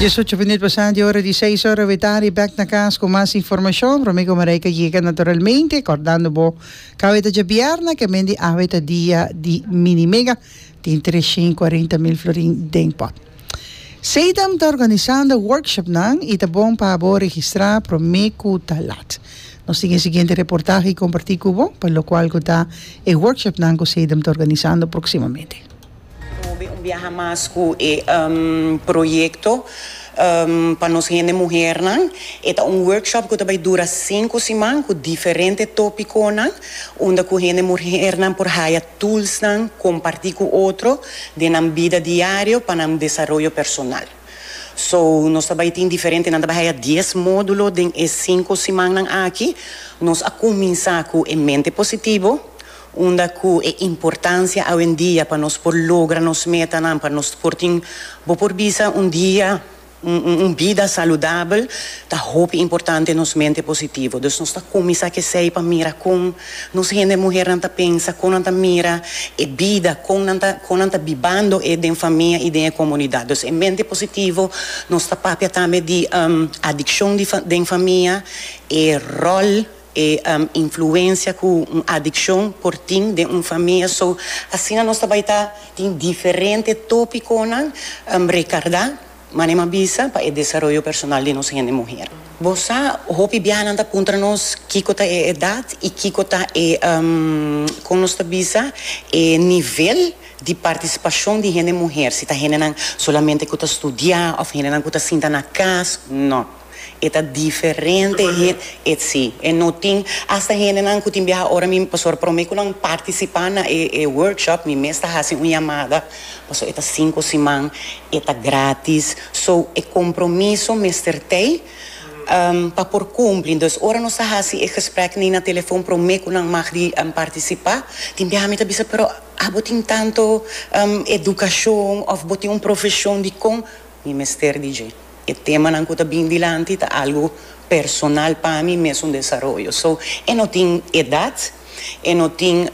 Diesocho minuut pasá di ora di seis ora wetari bèk na kas ku mas informashon. Romiko Mareika yega naturalmente kòrdando bo ke awe ta djabièrna ke mende awe ta dia di mini mega tin tres shen kuarenta mil florin den pòt. Seidam ta organisando workshopnan i ta bon pa bo registrá promé ku ta lat. Nos tin e siguiente reportahe kompartí ku bo pa lokual ku ta e workshopnan ku Seidam ta organisando proksimamente. Hopi un biaha mas ku e proyekto pa nos hende muhernan. E ta un workshop ku ta bai dura sinku siman ku diferente topikonan unda ku hende muhernan por haya tulsnan kompartí ku otro den nan bida diario pa nan desaroyo personal. So nos ta bai tin diferente nan ta bai haya dies módulo den e sinku simannan aki. Nos a kuminsá ku e mente positivo. Unda cu e importancia awendia pa nos por logra nos metanan, pa nos por tin, bo por bisa, un dia, un bida saludabel, ta hopi importante nos mente positivo. Dus nos ta cuminsa c'esey pa mira con nos hende muhernan ta pensa, con nan ta mira e bida, con nan ta, con nan ta bibando e den famia y den e comunidad. Dus e mente positivo nos ta papia tambe di adiccion di den famia, e rol. E influencia cu un adiccion por tin den un famia. So, asina nos ta bay ta tin diferente topiconan recarda, manera m'a bisa, pa e desaroyo personal di nos hende muher. Bo sa, hopi biahanan ta puntra nos kico ta e edad y kico ta e, con nos ta bisa, e nivel di participacion di hende muher, si ta hendenan solamente cu ta studia of hendenan cu ta sinta na cas, no. E ta diferente he etsi e no tin hasta hendenan cu tin biaha ora mi pasobra prome cu nan participa na e e workshop mi mes ta haci un yamada pasobra e ta cinco siman e ta gratis so e compromiso mester tey pa por cumpli entonces ora nos ta haci e gesprek ni na telefon prome cu nan mag di participa tin biaha mi ta bisa pero abo tin tanto educacion of bo tin un profesion dicon mi mester di dje. E temanan ku ta bin dilanti ta algu personal pa mi, mesun desaroyo. So, e no tin edat, e no tin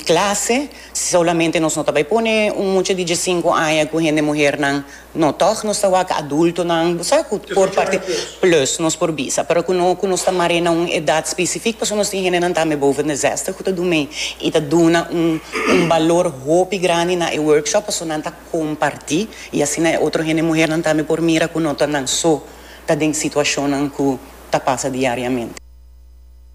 klase, solamente nos no ta bai pone un mucha di diesinku aña ku hende muhernan, no, tòg nos ta wak adultonan, bo sa ku por parti plus nos por bisa, pero ku no ku nos ta mar'é na un edat spesifik pasobra nos tin hendenan tambe boven de zèster ku ta dun mei i ta duna un balor hopi grandi na e workshop pasobra nan ta. comparti y asina e otro hende muhernan tambe por mira cu no ta nan so ta den situacionnan cu ta pasa diariamente.